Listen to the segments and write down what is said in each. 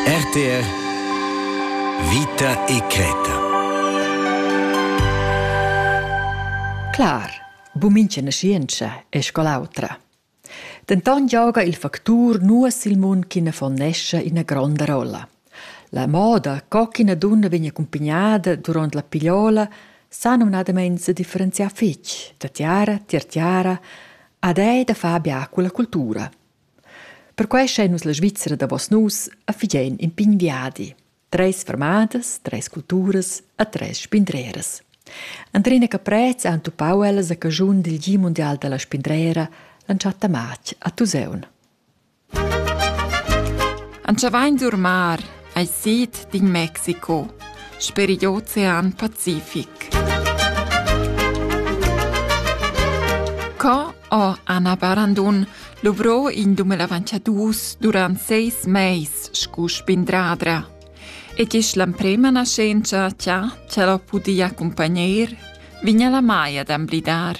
RTR Vita e creta Clar, bumincha nascientscha è scol'autra. Denton gioga il factur nuas il mund ch'ina fonnescha ina gronda rolla. La moda co ch'ina dunna vegn accumpagnada durant la pigliola sa numnadament se differenziar fitg da tiara, tier tiara, ad ei da far bia con la cultura. Perquai schain nus la Svizra davos nus e fidain in pign viadi. Treis fermadas, treis culturas e treis spindreras. Andrina Caprez ha entupau ellas a caschun dil Gi mundial dalla spindrera l'entschatta matg a Tuseun. Antschavain d'urmar Ei sid d'in Mexico sper igl Ocean Pacific. Co ha Anna Barandun luvrò in dume lavanchadus durant seis meis scu spindradra? E gis l'emprema nascenza cha ch'el ho pudi accumpagner, vigna la Maia d'amblidar.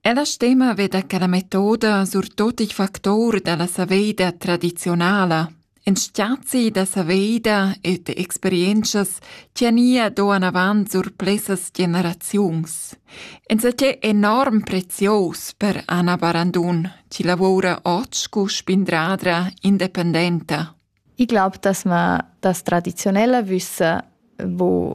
Ella stema veda che la metoda surtut il factor dalla saveida tradizionala, in stiazi da saveida e de experientschas tiania do anavant sur plessas generaziuns. Insatgé enorm prezios per Anna Barandun, chi lavora oggi cu spindradra independenta. Ich glaube, dass man das traditionelle Wissen, wo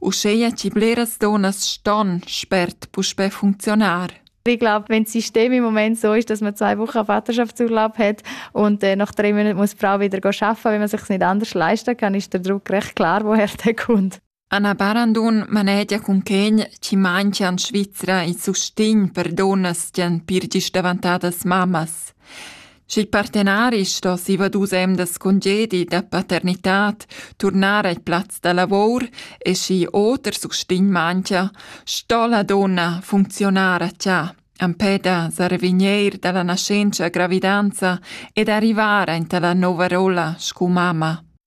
Uscheia chi bleras donnas ston spert puspè funcziunar. Ich glaube, wenn das System im Moment so ist, dass man zwei Wochen Vaterschaftsurlaub hat und äh, nach drei Monaten muss die Frau wieder arbeiten, wenn man sich nicht anders leisten kann, ist der Druck recht klar, woher der kommt. Anna Barandun manegia cun quegn chi manchia in Svizra i sustign per donnas gian pir gis davantadas mammas. sch'il partenari sto siva dus emdas congedi da paternitad turnar al plaz da lavor e schi oter sustign manchia, sto la donna funcziunar a cha empè da sarvigneir dalla nascenza gravidanza ed arrivar aint alla nova rolla scu mamma.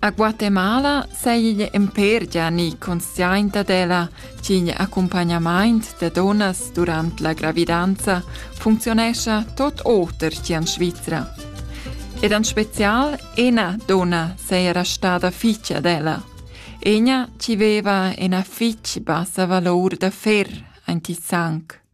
A Guatemala seiglia impergia ni consciainta della ch'igl accompagnamaint da dunnas durant la gravidanza functionescha tot oter che en Svizra. Ed en spezial ena donna seira stada ficia della. Ena ci veva ena fitg bassa valor da fer, ein ti sanc.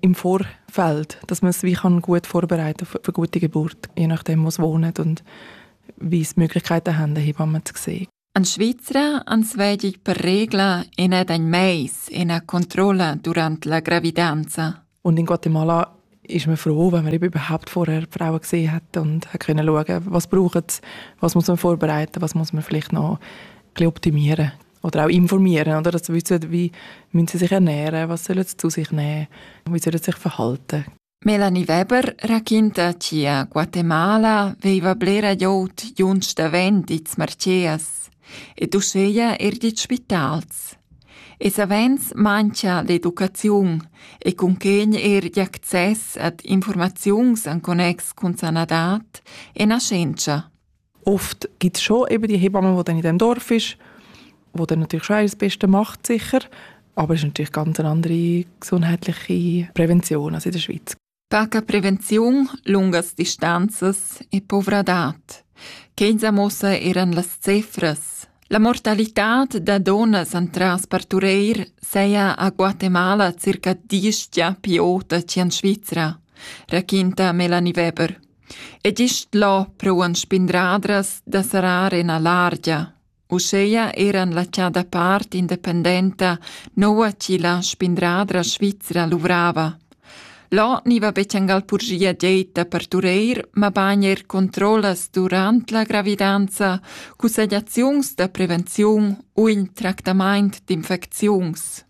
im Vorfeld, dass man es wie kann gut vorbereiten für, für gute Geburt, je nachdem, was wohnen und wie es Möglichkeiten haben, Hebammen zu sehen. An Schweizer ans vedi per regla ina den mais, ina Kontrolle durante la gravidanza. Und in Guatemala ist man froh, wenn man eben überhaupt vorher die Frauen gesehen hat und können schauen, was braucht was muss man vorbereiten, was muss man vielleicht noch optimieren. oder auch informieren, oder? Also wissen, wie müssen sie sich ernähren, was sollen sie zu sich nehmen, wie sollen sie sich verhalten. Melanie Weber racchinta ci a Guatemala veiva blera jout junts davent its marcias ed uscheia er dit spitals. E savens mancha l'educaziun e cunquegn er d'access ad informaziuns en connex cun sanadat e nascenza. oft gibt es schon eben die Hebamme, die dann in dem Dorf ist, wo dann natürlich schon das Beste macht, sicher. Aber es ist natürlich ganz eine andere gesundheitliche Prävention als in der Schweiz. Taka prevenziun lungas distanzas e povradad. Kenza mossa eran las cifras. La mortalità da donas antras partureir seia a Guatemala circa diestia piota cian Svizra, raquinta Melanie Weber. E gist là prouan spindradras da serrar ina largia. Uschea eran la chada part independenta noua chi la spindradra svizra luvrava. Là ni va bechangal purgia deta per tureir, ma bagn er controllas durant la gravidanza, cussegliaziuns da prevenziun u in tractamaint d'infecziuns.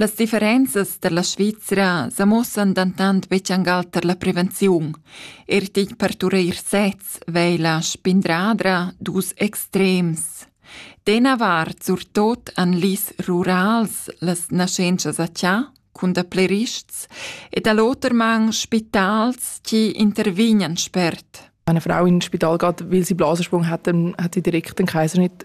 Las differenzas tar la Svizra sa muossan dentant betg angal tar la prevenziun. Er tigl partureir sez vei la spindradra dus extrems. D'ena vart surtot an lis rurals las naschentschas a tia, cun da plerists, e da l'oter man spitals chi intervignan spert. Wenn eine Frau in ein Spital geht, weil sie Blasensprung hat, dann hat sie direkt den Kaiser nicht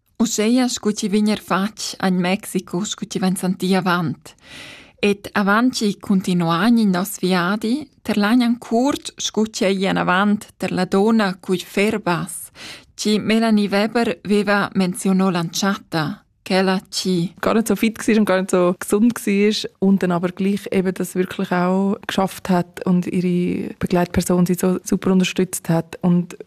Uscheia scu chi vegn eir fatg agn Mexico scu chi vain santì avant. Ed avant chi cuntinuagn il nos viadi terlagnan curt scu ch'ei anavant tar la donna cugl ferbas, chi Melanie Weber veva menziuno l'antschatta, quella chi gar nicht so fit war und gar nicht so gesund war und dann aber gleich eben das wirklich auch geschafft hat und ihre Begleitperson sie so super unterstützt hat und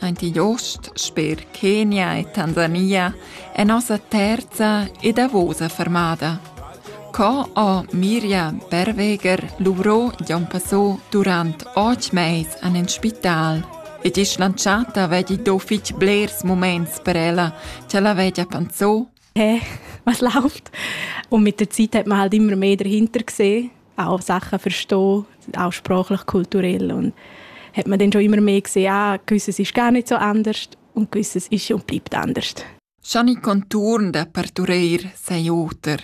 Aint igl ost, sper Kenia e Tanzania, è nossa terza e davosa fermada. Co ho Mirja Berweger luvrò Jon Passò durant otg mais an en spital ed isch lantschata vegli do fitg blers muments per ella, cha la vegia panzò hey, was läuft? Und mit der Zeit hat man halt immer mehr dahinter gesehen, auch Sachen verstehen, auch sprachlich, kulturell und hat man dann schon immer mehr gesehen, ah, gewisses ist gar nicht so anders und gewisses ist und bleibt anders. Gianni Contourn da partureir sei oter.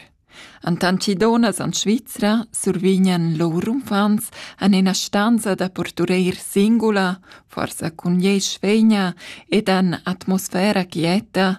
An tancidonas an Svizra survignan lur umfants an ina stanza da portureir singula, forsa cun iesch vegna ed an atmosfera quieta,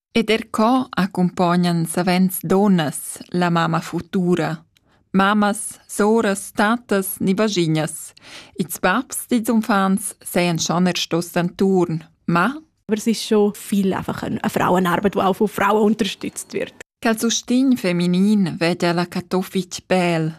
Ed er co accumpognan savens dunnas la mamma futura, mammas, soras, tattas ni vaschignas. Ils babs dils uffants sajan schon er stos d'enturn, ma Aber es ist schon viel einfach eine, eine Frauenarbeit, die auch von Frauen unterstützt wird. Quel sustegn feminin vede la Katowic bel.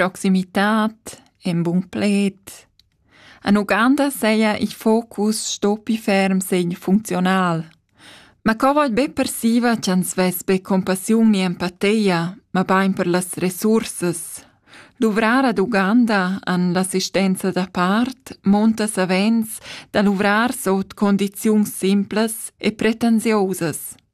Proximitad, en bun pled. En Uganda seia il focus stoppi ferm segn funzional. Ma co vaid be persiva ch'ans vess be compassiun ni empateia, ma bain per las resursas. Duvrar ad Uganda an l'assistenza da part monta savens da luvrar sot condiziuns simplas e pretensiosas.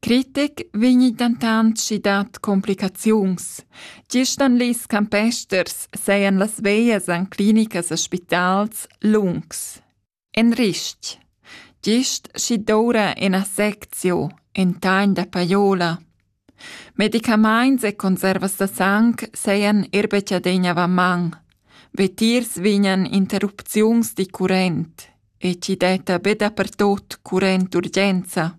Critic vegni dentant schi dad complicaziuns. Gist en ils campesters sajan las veglias en clinicas e spitals lungs. En ristg. Gist schi doura ina seczio, in tagn da paiola. Medicamaints e conservas da sang sajan er betschadegna va man. Vetiers vignan interrupziuns di current e ci detta be dapertot current urgenza.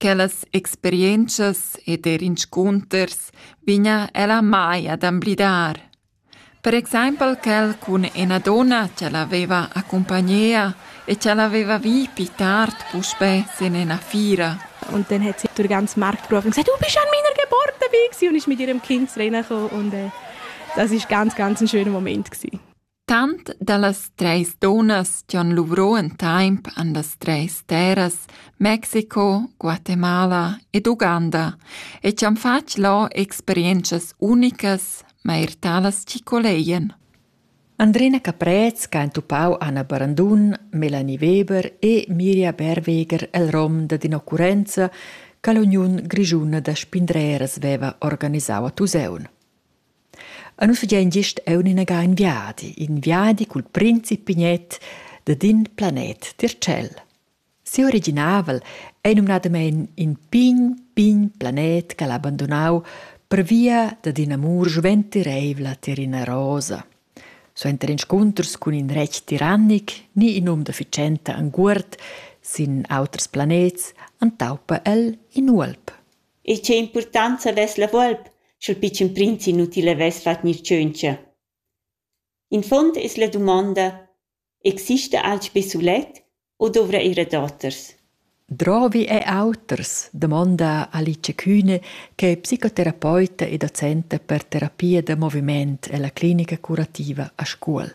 Quellas experientschas ed er inscunters vegna ella mai ad emblidar. Per exempel quel cun ina donna che l'aveva accumpagnea e che l'aveva vi pli tard puspè sin ina fiera. Und dann hat sie durch den ganzen Markt gerufen und gesagt, du bist an meiner Geburtstag gewesen. Und ist mit ihrem Kind reingekommen und äh, das war ganz, ganz ein schöner Moment gewesen. Tant dallas treis dunnas che han luvrau en temps han las treis terras Mexico, Guatemala ed Uganda e tschan fatg lò experientschas unicas, ma er talas chi colegian. Andrina Caprez ch'ha entupau Anna Barandun, Melanie Weber e Miria Berweger el rom dad in'occurrenza che l'Uniun grischuna da spindreras veva organisau a Tusaun. E nus fagein gist aunc inaga in viadi, in viadi cul prinz e Pignet dad in planet tier tschel. Siu originavel ei numnadamein in pign, pign planet ch'el ha abandonau pervia dad ina amur sventireivla tier ina rosa. Suenter inscunters cun in retg tirannic ni in um da fitschenta enguord sin auters planets entaupa el in uolp. e tgei impurtonza vess la volp sch'il pitschen prinz inutil havess fatg gnir tschöntscha. Infond es la dumonda exista alch be sulet u dovra ir a daoters? Drovi e auters, domonda Alice Kühne, che è psicoterapeuta e docente per terapia da moviment ella clinica curativa a Scuol.